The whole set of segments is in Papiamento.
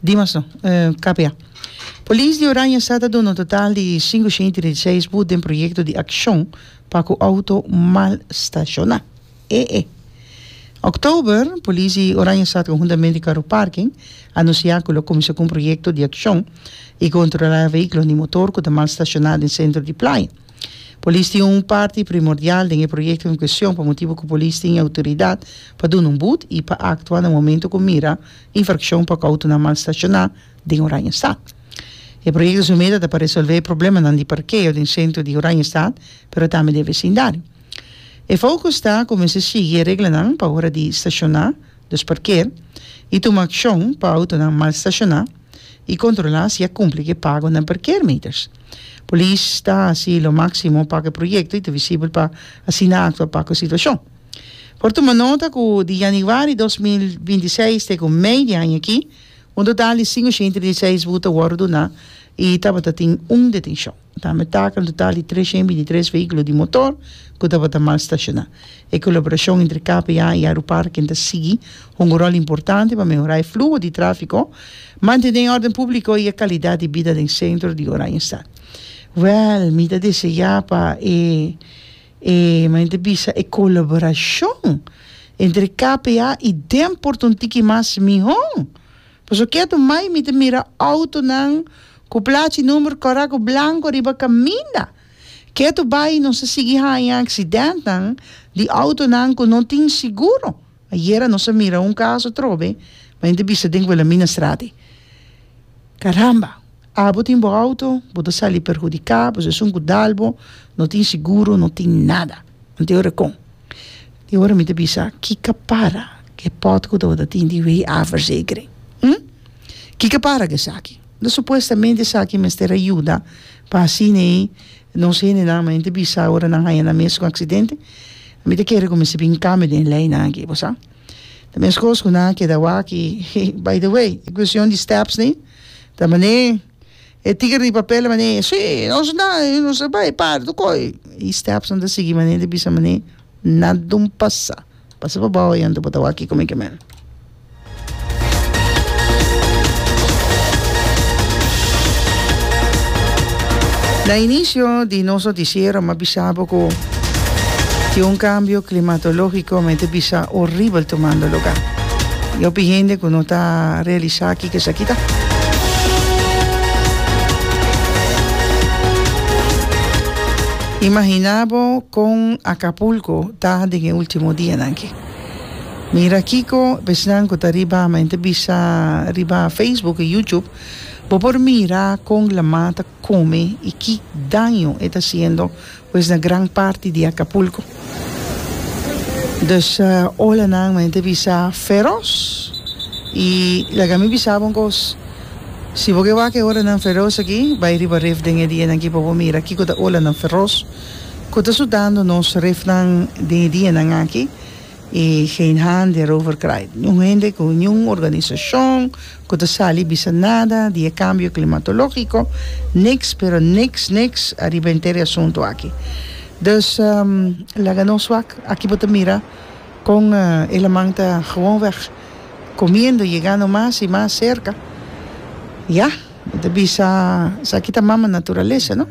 Dimas no. Kapia. Polis di Oranje sa ta duna un total di sinku shenti di seis bus den proyekto di akshon pa ku outo mal stashoná. E'e. Oktober, polis di Oranje Stad konhuntamente Karu Parking a anunsiá ku lo kuminsá ku un proyekto di akshon i kontrolá e vehíkulonan di motor ku ta mal stashoná den sentro di Playa. Polis tin un parti primordial den e proyekto en kuestion pa motibu ku polis tin e outoridat pa duna un bud i pa aktua na momentu ku mira Infraccion pa cu autonan mal staciona den Oranjestad. E proyecto su meta ta pa resolve e problemanan di parkeo den centro di Oranjestad pero tambe den e vecindario. E focus ta cu mester sigui e reglanan pa ora di staciona, dus parkeer, y tuma accion pa autonan mal staciona y controla si a cumpli cu e pagonan parkeermeters. Polis ta haci lo maximo pa cu e proyecto y ta visibel pa asina actua pa cu situacion. Por tuma nota cu di januari dos mil binti seis te cu mei di aña aki, un total di sin oshenta i diseis buta a worde duna i tabata tin un detencion. Tambe taca un total di treshen binti tres vehiculo di motor cu tabata mal stashona. E colaboracion entre KPA i Aeroparken ta sigui hunga rol importante pa mehora e fluho di trafico, mantene e orden publico i e calidad di bida den centro di Oranjestad. Wel, mi ta desea pa e E maente bisa e colaboracion entre KPA y Denport un tiki mas miho. Paso kia tu mai mi ta mira autonan cu plachi number corecto blanco riba caminda. Kia tu bay nos a sigui haya accidentenan di autonan cu no tin seguro. Ayera nos a mira un caso atrobe maente bisa den Wilhelmina Straat e. Caramba! Abo tin bo auto, bo ta sali perhudiká, boso esun ku dal bo, no tin siguro, no tin nada. Ante e ora kon? E ora mi ta bisa, kiko para ku e pòt ku tabata tin di wei a verzekering? Hm? Kiko para ku esaki? Unda supuestamente esaki mester a yuda pa asina ei nos hendenan men ta bisa ora nan haña nan mes un aksidente? Mi ta kere ku mester bin kambio den leinan aki, bo sa. Ta meskos ku nan a keda awaki, by the way, e kuestion di stèpsnan. Ta mané e tigre di papel a mané sí nos na i nos a bai para tur kos i stepson ta sigui mané ta bisa mané nada un pasa pasa pa bao ayanta bo ta wak kiko mi ke me. Na inicio di nos noticiero mi a bisa bo ku tin un cambio climatológico mi ta bisa horrible tumando lugar i hopi hende ku no ta realisa. Y ke esaki ta. Imagina bo kon Acapulco ta den e ultimo dianan ki. Mira kiko besnan ku ta riba men ta bisa riba Facebook y YouTube bo por mira kon laman ta. kome i ki daño e ta siendo pues na gran parti di Acapulco. Dus olanan men te bisa feros i laga mi bisa bo un kos, si bo ke wak e olanan feros aki bai riba ref den e dianan aki pa bo mira kiko ta olanan feros ku ta sudando nos refnan den e dianan aki i geen hande erover kraai, niun hende ku niun organisashon. Ku ta sali bisa nada di e kambio klimatológiko, niks pero niks niks ariba henter e asuntu aki. Dus laga nos wak aki bo ta mira kon e laman ta gewonweg komiendo, yegando mas i mas serka. Ya, mi ta bisa esaki ta mama naturalesa, no?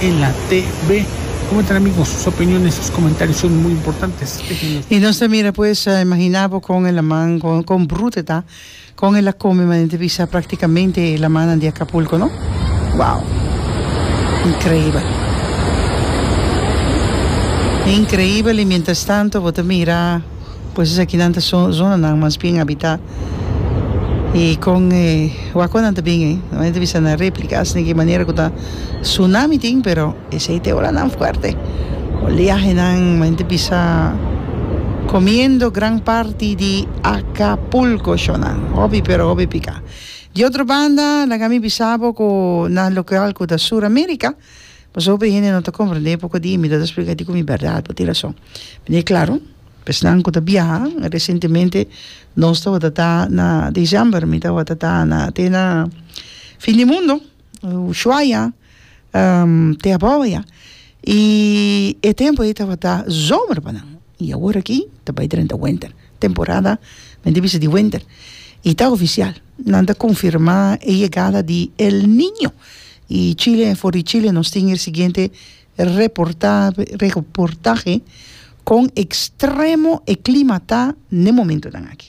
en la TV. Comentar ami con sus opiniones, sus comentarios son muy importantes. Y nos ta mira pues, imagina bo con el laman, con, con bruto e ta, con el a come manente bisa practicamente e lamannan di Acapulco, no? Wow! Increíbel. Increíbel y mientras tanto bo ta mira. Pues esakinan ta zonanan mas bien habitá. I kon e wakonan ta bin ei? Nan a bisa na réplika asina ku e manera ku ta sunami tin, pero esei ta e olanan fuerte. Oliahenan men ta bisa komiendo gran parti di Acapulco shownan. Hopi pero hopi piká. Di otro banda laga mi bisa bo ku na lokal ku ta Sur America. Pasobra hopi hende no ta komprendé poko di mi ta ta splika di ku mi bèrdat pa tin rason. Mira e klaro, pa esnan ku ta biaha resentemente nos tabata ta na December mi tabata ta na te na fin di mundo Ushuaia te Aboya i e tempu ei tabata zomer pa nan. Y awor aki ta bay drenta wenter, temporada men di bisa di wenter. Y ta oficial, nan ta confirma e yegada di El Niño. Y Chile, for di Chile nos tin e siguiente reportahe, con extremo e clima ta n'e momentonan aki.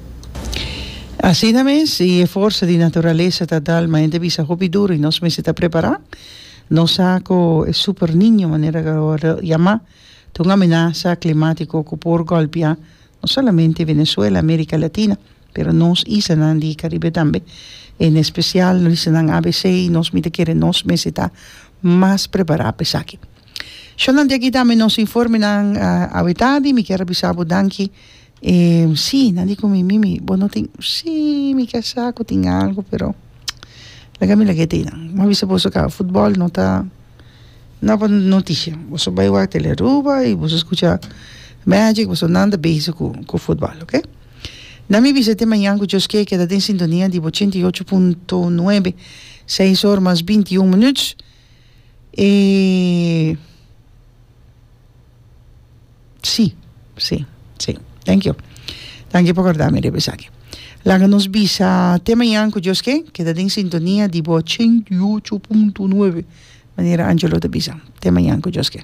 Asina mes, y e forsa di naturalesa ta dal ma hende bisa hopi duru y nos mester ta prepara. Nos sa cu e Super Niño, manera cu awor ta yama, ta un amenasa climatico cu por golpia no solamente Venezuela, America Latina, pero nos islanan di Caribe tambe. En especial nos islanan ABC y nos mi ta kere nos mester ta mas prepara pa esaki. Shornan di aki ta nos informenan a weta di mi kier a bisa bo danki. E si, nan di ku mi, Mimi, bo no tin, si, mi ke sa ku tin algu pero laga mi laga e tei nan, mi a bisa boso ka futbòl no ta no pa noticia, boso bai wak tele Aruba i boso skucha Magic, boso nan ta bezig ku futbòl oke, nan mi bisa te mañan ku djos ke keda den sintonia di ochenta i ocho punto nuebe, seis or mas binti un minut, e. Sí, sí, sí. Thank you. Thank you pa corda mi riba esaki. Laga nos bisa te mañan cu Dios ken. Keda den sintonia di bo 88.9 manera Angelo ta bisa. Te mañan cu Dios ken.